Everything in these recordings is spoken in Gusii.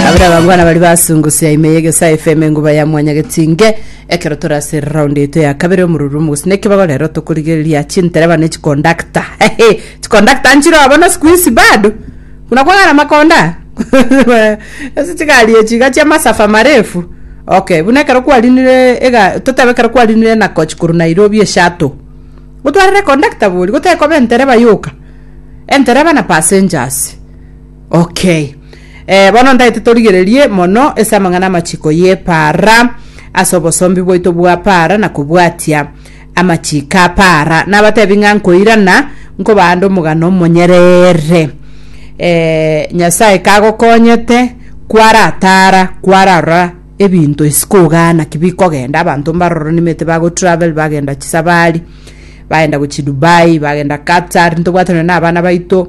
abere abangwana bari basungusia ime yegesa fm enguba ya mwanyagetinge ekero tore ase round eito ya kabere omoruru omogusii na ekibago rero tokorigereria chintereba ne chikondakta hehe chikondakta nchire obo na sikuisi bado buna kwang'ana makonda ase chigari echi iga chia masafa marefu okay buna ekero kwarinire ega totebe ekero kwarinire enakoch korwa nairobi esato gotwarire kondakta bori gotekoba entereba yoka entereba na passengers Okay. Eh, bono ndaete torigererie mono ase amang'ana amachiko y'epaara ase obosombi bwaito bwa paara na kobwatia amachiko a paara. Nabatebi ng'a nkoirana nkobaande omogano omonyereere. Eh, Nyasae kagokonyete kwaratara kwararora ebinto isiko igaa naki bikogenda abanto mbaroro nimete bagotravel bagenda chisabari bagenda gochi Dubai bagenda Qatar ntobwate nonye na abana baito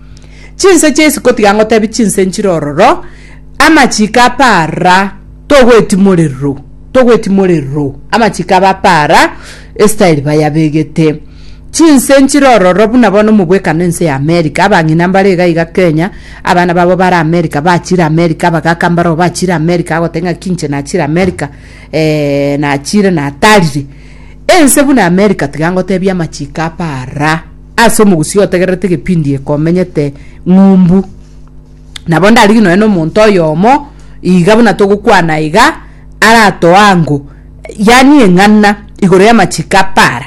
Chinse chi'esiko tiga ngotebi chinse nchire ororo, amachiko a para togwetimorerw, togwetimorerw, amachiko aba a para estyle bayabegete. Chinse nchire ororo buna bono omobwekano ense ya America, abang'ina mbare iga iga Kenya, abana babo bare America, bachire America, abagaka mbareo bachire America, agotebi ng'aki inche nachire America, eeh nachire natarire. Ense buna America tiga ngotebi amachiko a para. Ase omogusii otegererete egepindi eke omenyete ng'umbu. Nabo ndarigie nonya nomonto oyomo iga buna togokwana iga aratoe ango yaani eng'ana igoro y'amachiko apara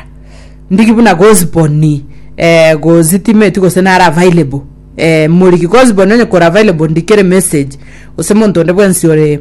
ndigi buna gosboni eh gositimeti gose nare available eh moriki gosboni onye kore available ndikere emessage gose monto onde bwensi ore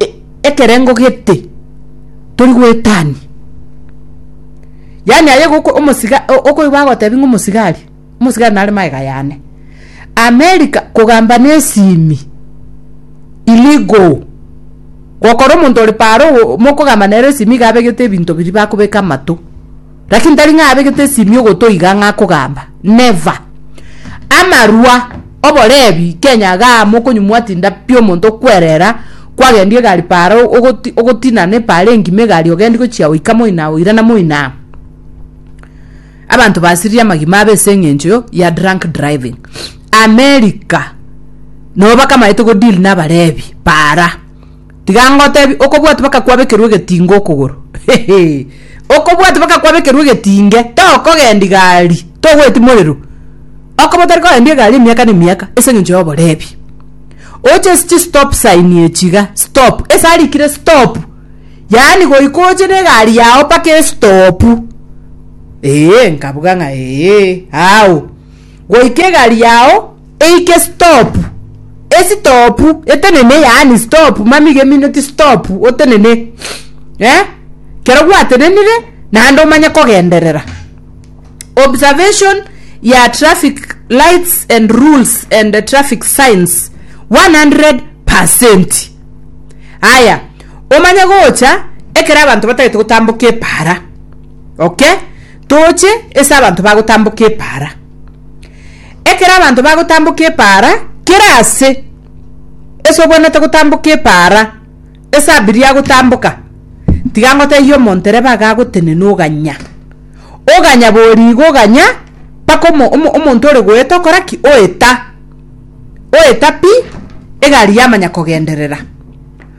e- ekerengo gete tori goetania. Yaani aye goko omosiga o- okoigwa agotebi ng'a omosigari, omosigari nare magega yane. America kogamba na esimi, illegal. Gokora omonto ore paro oo mokogamba nere esimi iga abegete ebinto biria bakobeka amato. Lakini tari ng'a abegete esimio gotoiga ng'a kogamba, never. Amarwa, oborebi, Kenya igaa mokonyumwa tinda pi omonto okwerera kwagendia egari paaro ogoti ogotinana epaaro engima egari ogendi gochia oika moina oirana moina. Abanto basirire amagima abe ase eng'encho ya drunk driving. America, nabo bakamaete go deal na abarebi paara. Tiga ngotebi, okobwati bakakwabekerwa egetinga okogoro, okobwati bakakwabekerwa egetinge, tokogenda igari, togweti morero, okoba otari kogendia egari emiaka na emiaka ase engencho y'oborebi. Oche ase chistop sign echi iga, stop, ase arikire stop, yaani goika oche na egari yao mpaka estopu, ee, nkabuga ng'a ee, ao, goika egari yao. Eike stop Stop etenene yaani stop mami geminute stop otenene eh kero gwatenenire naende omanye kogenderera observation ya traffic lights and rules and the traffic signs 100 percent aya omanye gocha ekero abanto batagete gotamboka epara okay toche ese abanto bagotamboka epara Ekero abanto bagotamboka epaara, kera aase ase obwenerete gotamboka epaara ase abirie agotamboka, tiga ngotebie omonto reba iga agotenena oganya. Oganya bori igo oganya mpaka omo omo omonto ore goeta okora ki? Oeta. Oeta pi, egari yamanya kogenderera.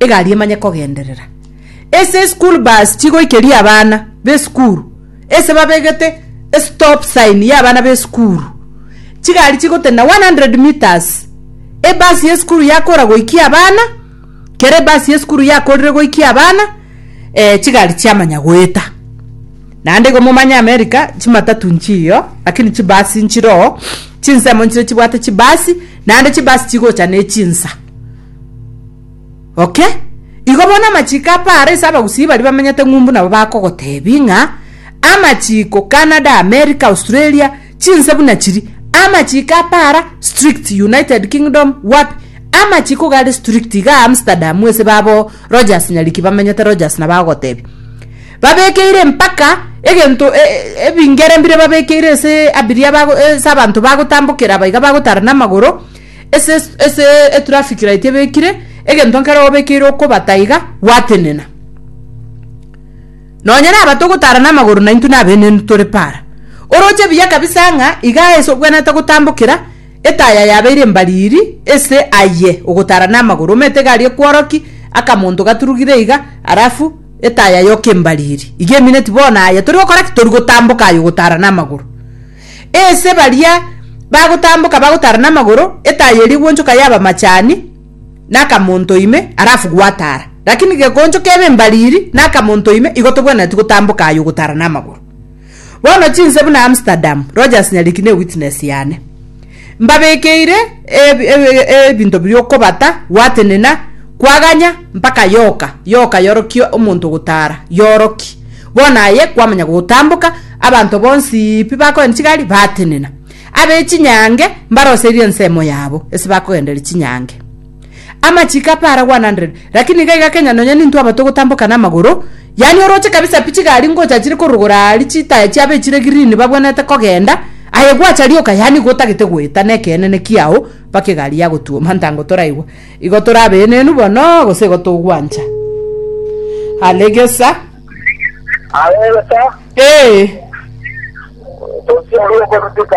Egari emanye kogenderera ase eschool bus chigoikeria abana b'esukuru ase babegete estop sign y'abana b'esukuru. Chigari chigotenena one hundred metres ebasi y'esukuru yakora goikia abana kera ebasi y'esukuru yakorire goikia abana chigari chiamanya goeta. Naende igo momanye America chimatatu nchiyo lakini chibasi nchiroo chinsemo nchire chibwate chibasi naende chibasi chigocha ne chinsa. Okay, igo bono amachiko apara ase abagusii baria bamenyete ng'umbu nabo bakogotebi ng'a amachiko Canada, America, Australia, chinse buna chiri, amachiko apara strict, United Kingdom, wapi, amachiko gare strict iga Amsterdam ase babo Rogers Nyariki bamenyete Rogers nabo agogotebi babekeire mpaka egento e- e- ebingere mbire babekeire ase abiria bago ase abanto bagotambokera aba iga bagotarana amagoro Ase ase etraffic light ebekire egento nkere obekeire okobata iga gwatenena nonye na abato gotara na amagoro na intu na benenu tore para oroche biya kabisa ng'a iga ase obwenete gotambokera etaya yabeire mbariri ase aye ogotara na amagoro omete gari ekworoki akamonto gaturugire iga alafu etaya yoke mbariri iga emineti bono aye tori gokora ki tori gotamboka aye ogotara na amagoro. Aase baria bagotamboka bagotara namagoro, etayo eria eguonchoka yaba amachani, na akamonto ime, alafu gwatara. Lakini gekoncho kebe embariri, na akamonto ime, igo tobwenereti gotamboka aye ogotara namagoro. Bono chinse buna Amsterdam, Rogers Nyariki ne witness yane. Mbabekeire ebinto bi'okobata, gwatenena, kwaganya, mpaka yoka yoka yorokie omonto ogotara, yoroki. Bono aye kwamanya gotamboka, abanto bonsi pi bakoenda chigari batenena. Abe chinyange mbaroserie ensemo yabo, ase bakogenderia chinyange. Amachiko ape ara 100 lakini iga iga kenya nonya ninto aba togotamboka namagoro yaani oroche kabisa pi chigari ngocha chire korogora aari chitaya chiabo echire green babwenerete kogenda aye gwacha rioka yaani igo otagete goeta nekeene kiao mpaka egari yagotuoma ntango toraigwa igo torabenenu bono gose igo togwancha alegesa Alegesa, ee tosia rioka rutuka.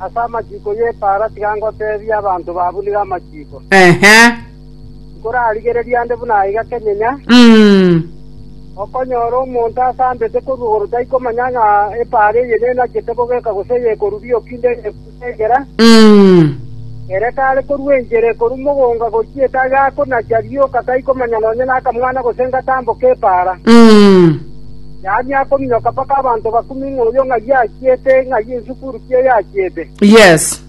Ase amachiko y'epaara tiga ngoteebie abanto babunire amachiko, Nkorarigereria nde buna aiga kenyenya, okonyora omonto asambete korwa igoro taikomanya ng'a epaara eye nenachete kogeka gose eyekoruria okinde eyebusa egera, ere kare korua enchera ekorua mogonga gochia etabe akonachia rioka taikomanya nonye nakamwana gose ngatamboka epaara. Yaani akominyoka mpaka abanto bakumie ng'a oyo ng'ai achiete, ng'ai esukuru ki eye achiete. Yes.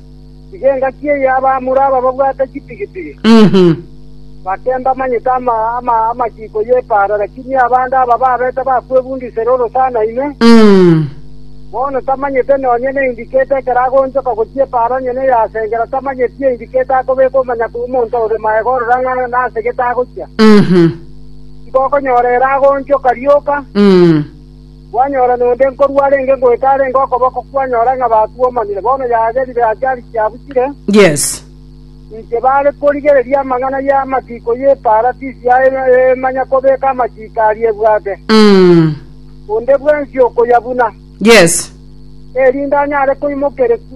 Tiga engaki eye abamura aba babwate chipigipigi, Mhm. bake mbamanyete ama, ama, amachiko y'epaara, lakini abande aba babete bakwebundisera orosana ime, Mm. bono tamanyete nonye ne indiketa ekero agoonchoka gochia epaara onye neyasengera, tamanyeti eindiketa akobeka omanya kw'omonto ore magega orora ng'a nase gete agochia. Mhm. tibokonyora ere agoonchoka rioka, kwanyora nonde nkorua arenge ngoeta arenge okoboko kwanyora ng'a batuomanire, bono yagerire ase arikia abuchire. Inche baare korigereria amang'ana y'amatiiko y'Eparatisi aya emanya kobeka amatiiko aria ebwate, onde bwensi okoyabuna, erinde anyare koimokereku.